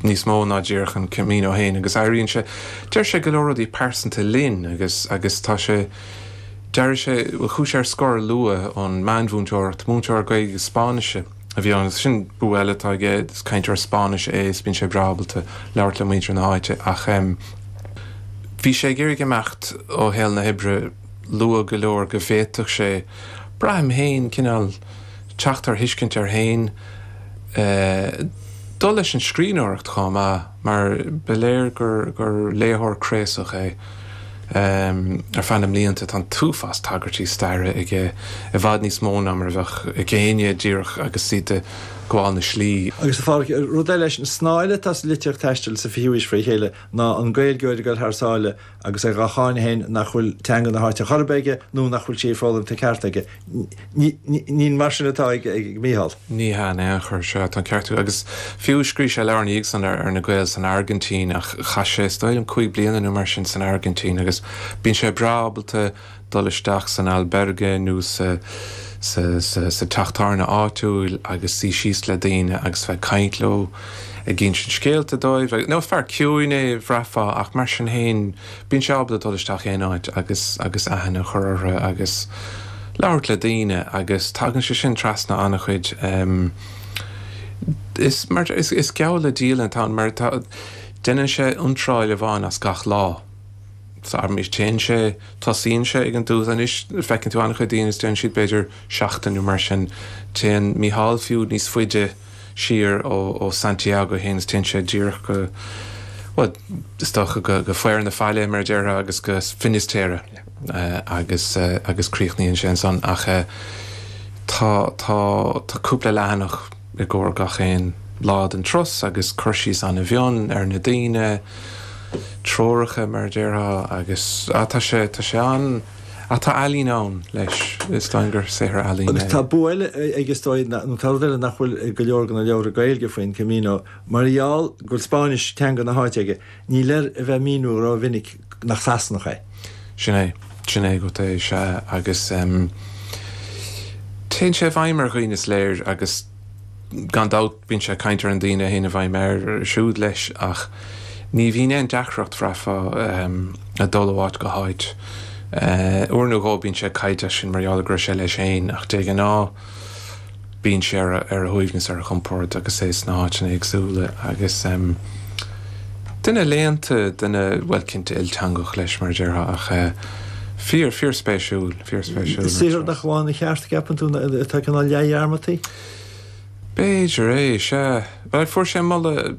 níos mó ná díreach an Camino féin agus airíonn sé, deir sé go leor rudaí pearsanta linn agus, agus tá sé, d'éirigh sé, bhuel, chuaigh sé ar scor luath ón meánmhúinteoireacht, múinteoir Gaeilge agus Spáinnise a bhí ann agus sin bua eile atá aige, is cainteoir Spáinnise é is bíonn sé breá ábalta labhairt le muintir na háite ach, em, bhí sé ag iarraidh imeacht ó shaol na hoibre. luath go leor go bhféadfadh sé, braithim féin, cineál teacht ar thuiscint air féin, dul leis an scríbhneoireacht chomh maith mar ba léir gur léitheoir craosach é. Ar feadh na mblianta tá an t-uafás tagairtí staire aige, i bhfad níos mó ná mar a bheadh ag éinne díreach agus iad ag gabháil na slí. Agus, a Phádraig, rud eile is snáth atá sa litríocht taistil sa 20ú haois fré chéile ná an Gaeilgeoir ag dul thar sáile, agus é dhá cháineadh féin nach bhfuil teanga na háite a chor ar bith aige nó nach bhfuil sí foghlamtha ceart aige. Ní mar sin atá ag Micheál. Ní hea in aon chor, sea, tá an ceart agat. Agus fiú, scríobh sé leabhar ina dhiaidh san ar na Gaeil san Airgintín ach chaith sé, is dóigh liom, cúig bliana nó mar sin san Airgintín agus bíonn sé breá ábalta, dul isteach san albergue nó sa teach tábhairne áitiúil agus suí síos le daoine agus a bheith ag caint leo, ag insint scéalta dóibh. Anois fear ciúin é, bhraithfeá, ach mar sin féin, bíonn sé ábalta dul isteach aon áit agus aithne a chur orthu agus labhairt le daoine agus tagann sé sin trasna an-chuid. Is geall le dialann atá ann mar déanann sé iontráil amháin as gach lá. téann sé, tosaíonn sé ag an dtús anois feiceann tú an-chuid daoine anois déanann siad b'fhéidir seachtain nó mar sin, téann Micheál fiú níos faide siar ó Santiago fhéin is téann sé díreach go, bhuel is dócha go fíor na faille mar a déarfá agus go Finisterre agus, agus críochnaíonn sé ansan ach tá, tá, tá cúpla leathanach. i gcomhair gach aon lá den turas agus cur síos ana mhion ar na daoine, treoracha mar a déarfá agus ah tá sé, tá sé an, ah tá ealaín ann leis, is dóigh gur saothar ealaíne é. Agus tá bua eile aige is dóigh nó tá rud eile nach bhfuil i go leor de na leabhra Gaeilge faoin Camino, mar gheall go bhfuil Spáinnis teanga na háite aige, níl air a bheith ag míniú ró mhinic nach Sasanach é. Sin é. Sin é agat é, sea, agus téann sé i bhfeidhm ar dhaoine, is léir, agus gan dabht bíonn sé ag caint ar na daoine a théann i bhfeidhm air siúd leis, ach ní bhíonn aon deacracht aige, bhraithfeá, ag dul ó áit go háit. Uair nó dhó bíonn sé ag caint air sin mar gheall go raibh sé leis féin, ach de ghnáth, bíonn sé ar a shuaimhneas, ar a chompord agus é sna háiteanna éagsúla agus duine léannta, duine, bhuel, cinnte ilteangach leis, mar a déarfá ach fíor, fíorspéisiúil, fíorspéisiúil. Saothar nach bhfuair a cheart, an gceapann tú, atá cineál leathdhearmadta? B'fhéidir é, sea. Bhuel, fuair sé moladh.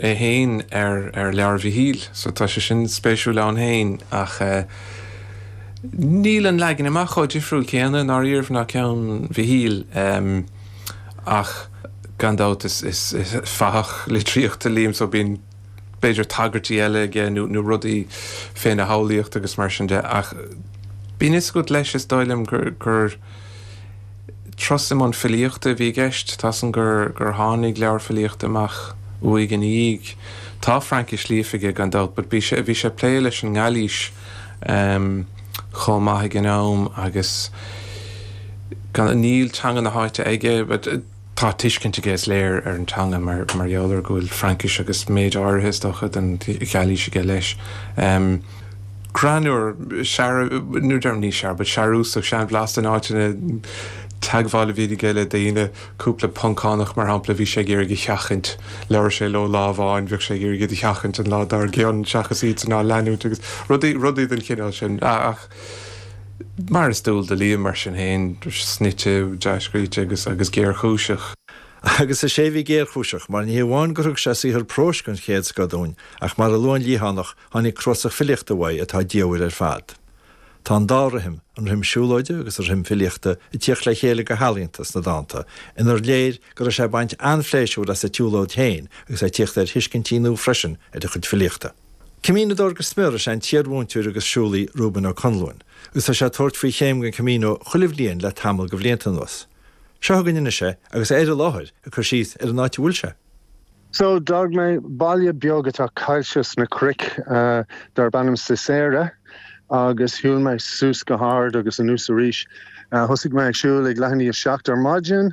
é féin ar ar leabhar Mhichíl so tá sé sin spéisiúil ann féin ach eh níl an leagan amach an-difriúil in aon chor, déarfainn, ná ceann Mhichíl em ach gan dabht is is is fathach litríochta Liam so bíonn b'fhéidir tagairtí eile aige nó nó rudaí féna shamhlaíocht agus mar sin de ach bíonn fhios agat leis is dóigh liom gur gur Turas i mbun filíochta a bhí i gceist. Tá san gur gur tháinig leabhar filíochta amach uaidh ina dhiaidh. Tá Fraincis líofa aige, gan dabht, but bhí sé bhí sé ag plé leis an nGailís chomh maith ag an am agus níl teanga na háite aige. Tá tuiscint aige, is léir, ar an teanga mar gheall ar go bhfuil Fraincis agus méid áirithe, is dócha, den Ghailís aige leis. Greannúr, searbh, nó ní déarfainn searbh, but searbhasach, seanbhlasta in áiteanna, teagmháil a bhíonn aige le daoine, cúpla Poncánach, mar shampla, bhí sé ag iarraidh a sheachaint, labhair sé leo lá amháin, bheadh sé ag iarraidh iad a sheachaint an lá dár gcionn seachas iadsan a leanúint agus rudaí den chineál sin. Mar is dual do Liam, mar sin féin, snoite, dea-scríte agus géarchúiseach. Agus is é a bhí géarchúiseach, mar ní hamháin gur thug sé saothar próis den chéad scoth dúinn, ach mar a luadh an Liathánach, tháinig cnuasach filíochta uaidh atá diamhair ar fad. Tá an dá rithim, an rithim siúlóide agus an rithim filíochta, ag tíocht le chéile go healaíonta sna dánta, inar léir go raibh sé ag baint an-phléisiúir as a tsiúlóid féin agus é ag tíocht ar thuiscintí nua freisin ar a chuid filíochta. Caminoadóir go smior is ea an t-iarmhúinteoir agus siúlaí Reuben Ó Conluain, agus tá sé ag tabhairt faoi chéim den Camino chuile bhliain le tamall de bhlianta anuas. Seo againn anois é, agus é ar an láthair ag cur síos ar an áit a bhfuil sé. So, d'fhág mé baile beag atá caillte sna cnoic darb ainm Sisera agus shiúil mé suas go hard agus anuas arís. Thosaigh mé ag siúl ag leath i ndiaidh a seacht ar maidin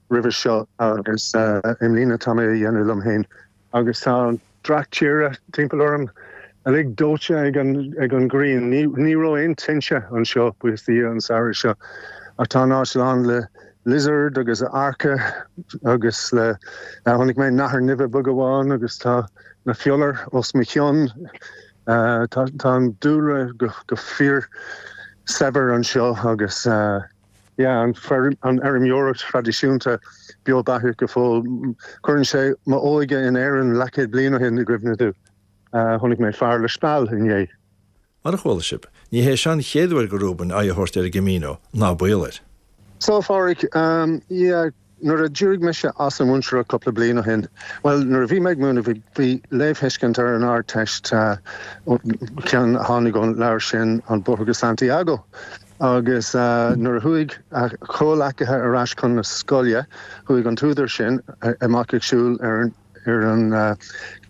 roimhe seo agus i mbliana tá mé a dhéanamh liom féin agus tá an dreach tíre timpeall orm uilig dóite ag an ghrian. Ní raibh aon tinte anseo, buíochas do Dhia, an samhradh seo ach tá an áit lán le lizard agus earca agus le. Chonaic mé nathair nimhe beag amháin agus tá na fiolair os mo chionn. Tá an dúlra go fíor saibhir anseo agus. Leanann an fheirmeoireacht thraidisiúnta beo beathach go fóill. Cuireann sé m'óige in Éirinn leathchéad bliain ó shin i gcuimhne dom. Chonaic mé fear le speal inné. Mar a chuala sibh, ní hé seo an chéad uair do Reuben aghaidh a thabhairt ar an gCamino, ná baol air. Seán Phádhraic, Yeah. Nuair a d'éirigh mise as an mhúinteoireacht cúpla bliain ó shin, bhuel, nuair a bhí mé ag múineadh, bhí léamhthuiscint ar an Ardteist, ceann a tháinig ón leabhar sin An Bóthar go Santiago, agus nuair a chuaigh a chomhleacaithe ar ais chun na scoile, chuaigh an t-údar sin amach ag siúl ar an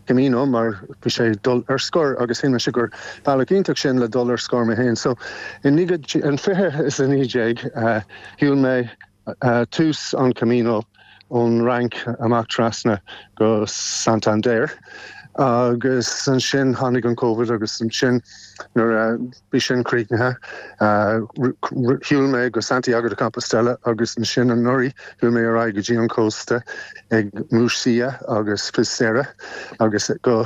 Chamino, mar bhí sé ag dul ar scor, agus shíl mise gur bealach iontach sin le dul ar scor mé féin. So, in fiche is a naoi déag, shiúil mé tús an Camino ón Fhrainc amach trasna go Santander agus ansin tháinig an Covid agus ansin nuair a bhí sin críochnaithe shiúil mé go Santiago de Compostela agus ansin anuraidh shiúil mé ar aghaidh go dtí an cósta ag Muxía agus Fisterra agus go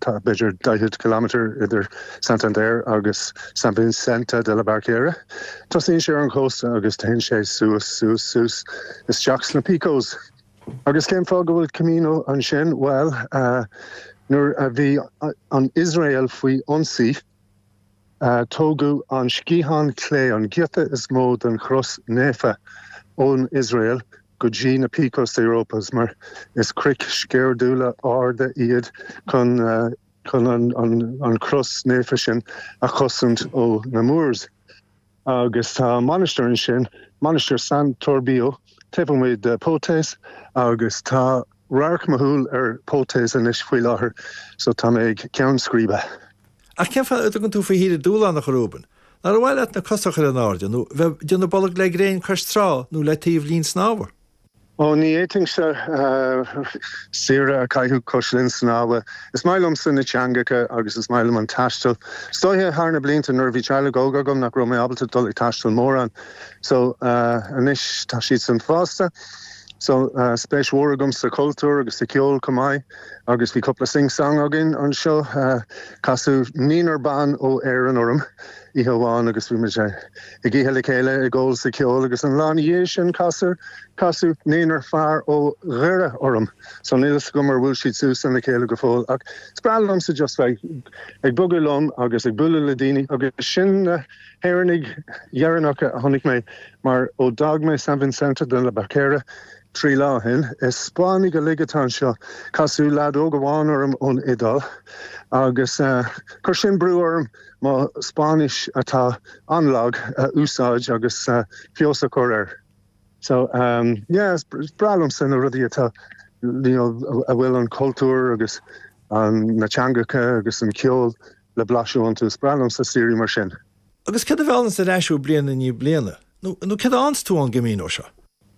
Tá b'fhéidir 40 km idir Santander agus San Vincente de la Barquera. Tosaíonn sé ar an chósta agus téann sé suas, suas, suas isteach sna Picos. Agus cén fáth go bhfuil Camino ansin? Bhuel, nuair a bhí an Iosrael faoi ionsaí, Tógadh an sciathán clé, an giota is mó den chros naofa, ón Iosrael go dtí na Picos de Europa, mar is cnoic sceirdiúla arda iad, chun, chun an chros naofa sin a chosaint ó na Moors. agus tá mainistir ansin, Mainistir San Toribio, taobh amuigh de Potes agus tá radharc mo shúile ar Potes anois faoi láthair so tá mé ag ceann scríbe. Ach cén fáth a dtugann tú faoi shaoire dúshlánach, a Reuben? Nár mhaith leat na cosa a chur in airde nó bheith ag déanamh bolg le gréin cois trá nó le taobh linn snámha? Ó, ní fhéadfainnse. saoire a chaitheamh cois linn snámha. Is maith liomsa na teangacha agus is maith liom an taisteal. Is dóiche thar na blianta nuair a bhí teaghlach óg agam nach raibh mé ábalta dul ag taisteal mórán. So, anois tá siadsan fásta. So, tá spéis mhór agam sa chultúr agus sa cheol chomh maith agus bhí cúpla sing-song againn anseo. Casadh naonúr ban ó Éirinn orm oíche amháin agus bhí muid ag. Ag ithe le chéile, ag gabháil cheoil agus an lá ina dhiaidh sin casadh, casadh naonúr fear ó Dhoire orm. So níl a fhios agam ar bhuail siad suas lena chéile go fóill ach is breá liomsa just bheith ag bogadh liom agus ag bualadh le daoine agus sin na hÉireannaigh deireanacha a chonaic mé mar ó d'fhág mé San Vincente de la Barquera Trí lá ó shin, is Spáinnigh uilig atá anseo. Casadh leaid óg amháin orm ón Iodáil agus chuir sin brú orm mo Spáinnis, atá an-lag, a úsáid agus feabhas a chur uirthi. So, yeah, is breá liomsa na rudaí atá, you know, a bhfuil an cultúr agus na teangacha agus an ceol le blaiseadh iontu. Is breá liomsa saoirí mar sin. Agus céard a mheallanns ar ais thú bliain i ndiaidh bliana? Nó céard a fhaigheann tú ón gCamino seo?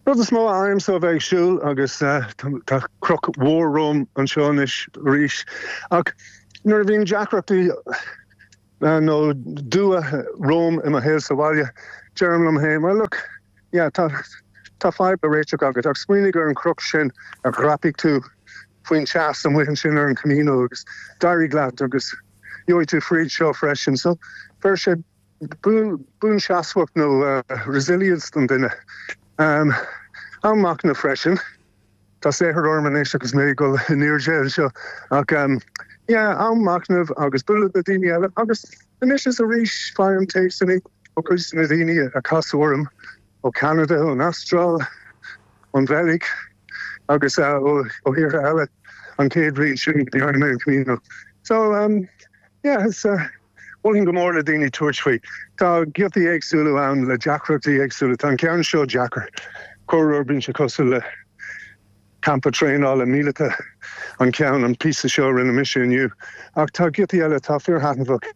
Rud is mó a fhaighimse ó bheith ag siúl, agus tá cnoc mór romham anseo anois arís, ach nuair a bhíonn deacrachtaí nó dua romham i mo shaol sa bhaile, deirim liom féin, bhuel, look, yeah, tá fadhb le réiteach agat, ach smaoinigh ar an gcnoc sin a dhreap tú faoin teas amuigh ansin ar an gCamino agus d'éirigh leat agus. Gheobhaidh tú fríd seo freisin. So, faigheann sé buanseasmhacht nó resilience an duine. Am machnaimh freisin. Tá saothar orm anois agus mé ag dul in airde anseo ach am machnaimh agus bualadh le daoine eile agus anois is arís faighim téacsanna ó chuid de na daoine a casadh orm ó Cheanada, ón Astráil, ón Bheilg agus ó thíortha eile an chéad bhliain sin gan trácht ar chomhrá. So, um, yeah, is, uh, mholfainn go mór le daoine tabhairt faoi. Tá giotaí éagsúla ann le deacrachtaí éagsúla. Tá an ceann seo deacair. Corruair bíonn sé cosúil le Campa traenála míleata an ceann, an píosa seo a rinne mise inniu, ach tá giotaí eile atá fíorthaitneamhach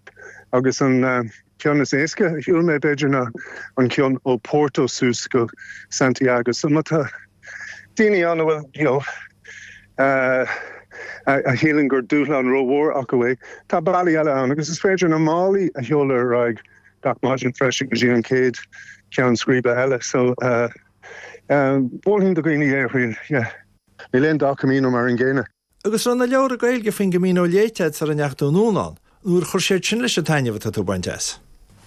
agus an ceann is éasca a shiúil mé b'fhéidir ná an ceann ó Porto suas go Santiago. So má tá daoine ann a bhfuil, you know, a shíleann gur dúshlán rómhór acu é, tá bealaí eile ann agus is féidir na málaí a sheoladh ar aghaidh gach maidin freisin go dtí an chéad cheann scríbe eile. So. Mholfainn do dhaoine é a thriail. Níl aon dá Camino mar an gcéanna. Agus an raibh na leabhra Gaeilge faoin gCamino léite agat sara ndeachaigh tú anonn ann? Nó ar chuir siad sin leis an taitneamh atá tú ag baint as?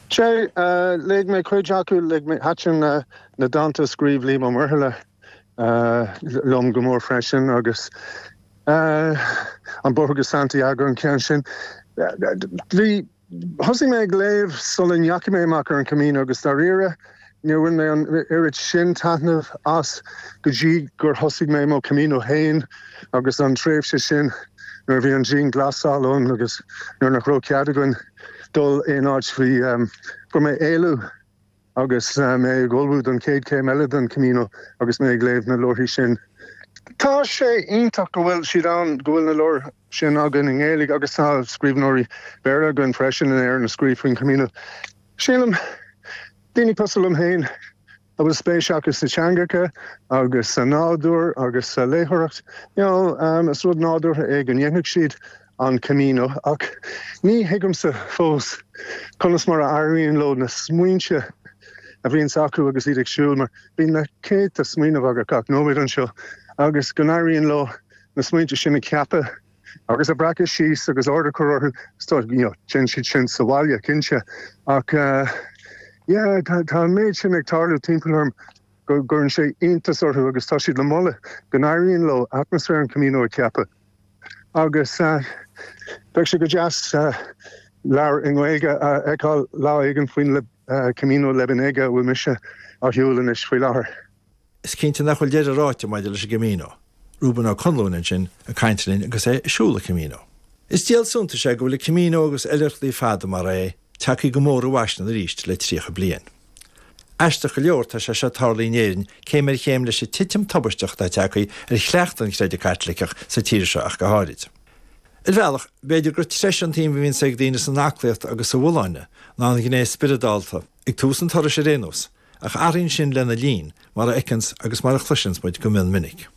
Sea, léigh mé cuid acu. Léigh mé. Thaitin na dánta a scríobh Liam Ó Muirthile liom go mór freisin agus An Bóthar go Santiago an ceann sin. Thosaigh mé ag léamh sula ndeachaigh mé amach ar an Camino agus dáiríre níor bhain mé an oiread sin taitnimh as go dtí gur thosaigh mé mo Camino féin agus an tréimhse sin nuair a bhí an dianghlasáil ann agus nuair nach raibh cead againn dul aon áit bhí orm éalú. Agus mé ag ullmhú don chéad chéim eile den Camino agus mé ag léamh na leabharthaí sin, tá sé iontach go bhfuil siad ann, go bhfuil na leabhair sin againn i nGaeilge agus tá scríbhneoirí Béarla againn freisin in Éirinn a scríobh faoin Chamino. Sílim, daoine cosúil liom féin, a bhfuil spéis acu sna teangacha agus sa nádúr agus sa léitheoireacht, you know, is rud nádúrtha é go ndéanfadh siad. an Camino, ach ní thuigimse fós conas mar a éiríonn leo na smaointe a bhíonns acu agus iad ag siúl, mar bíonn na céadta smaoineamh agat gach nóiméad anseo, agus go n-éiríonn leo na smaointe sin a cheapadh agus a bhreacadh síos agus ord a chur orthu, so you know, déanann siad sin sa bhaile, cinnte, ach eh, yeah, tá tá an méid sin ag tarlú timpeall orm go gcuireann sé iontas orthu agus tá siad le moladh go n-éiríonn leo atmaisféar an Camino a cheapadh. agus bheadh sé go deas leabhar i nGaeilge a fheiceáil lá éigin faoin Camino Lebaniego a bhfuil mise á shiúl anois faoi láthair. Is cinnte nach bhfuil deireadh ráite maidir leis an gCamino. Reuben Ó Conluain ansin ag caint linn agus é ag siúl an Chamino. Is díol suntais é go bhfuil an Camino agus oilithreachtaí fada mar é ag teacht go mór i bhfaisean arís le 30 bliain. Aisteach go leor, tá sé seo ag tarlú in Éirinn céim ar chéim leis an titim tubaisteach atá teagthaí ar chleachtadh an chreidimh Caitliceach, sa tír seo ach go háirid. Ar bhealach, b'fhéidir gur treise an tsuim a bhíonns ag daoine san aclaíocht agus sa bhfolláine ná an ghné spioradálta, ag tús an turais ar aon nós, ach athraíonn sin lena linn, mar a fheiceanns agus mar a chloiseanns muid go mion minic.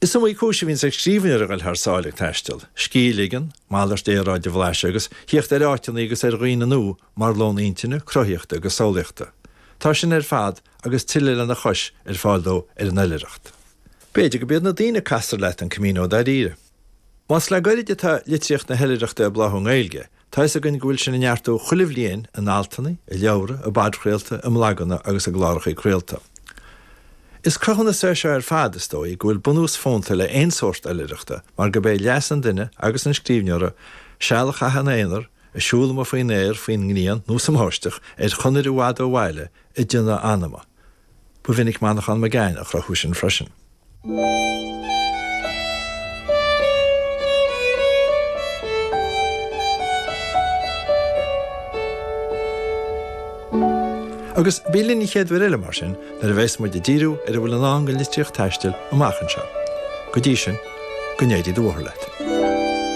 Is iomaí cúis a bhíonns ag scríbhneoir a ghoil thar sáile ag taisteal, scíth a ligean, malairt aeráide a bhlaiseadh agus thíocht ar áiteannaí agus ar dhaoine nua, mar lón intinne, cruthaíochta agus samhlaíochta. Tá sin ar fad agus tuilleadh lena chois ar fáil dó ar an oilithreacht. B'fhéidir gurb iad na daoine a castar leat an Camino dairíre. Más le gairid atá litríocht na hoilithreachta ag bláthú i nGaeilge, tá fhios againn go bhfuil sin ag neartú chuile bhliain in altanna, i leabhra, i bpodchraolta, i mblaganna agus i gclárachaí craolta. Is cruthúnas é seo ar fad, is dóigh, go bhfuil bunús fónta le haon sórt oilithreachta mar gurb é leas an duine agus an scríbhneora seal a chaitheamh ina aonar, ag siúl amuigh faoin aer, faoin ngrian nó sa mbáisteach, ar chonair i bhfad ó bhaile, ag déanamh a anama. Ba mhinic Manchán Magan á chruthú sin freisin. Agus bí linn an chéad uair eile, mar sin, nuair a bheas muid ag díriú ar a bhfuil i ndán don litríocht taistil amach anseo. Go dtí sin, go n-éirí do bhóthar leat.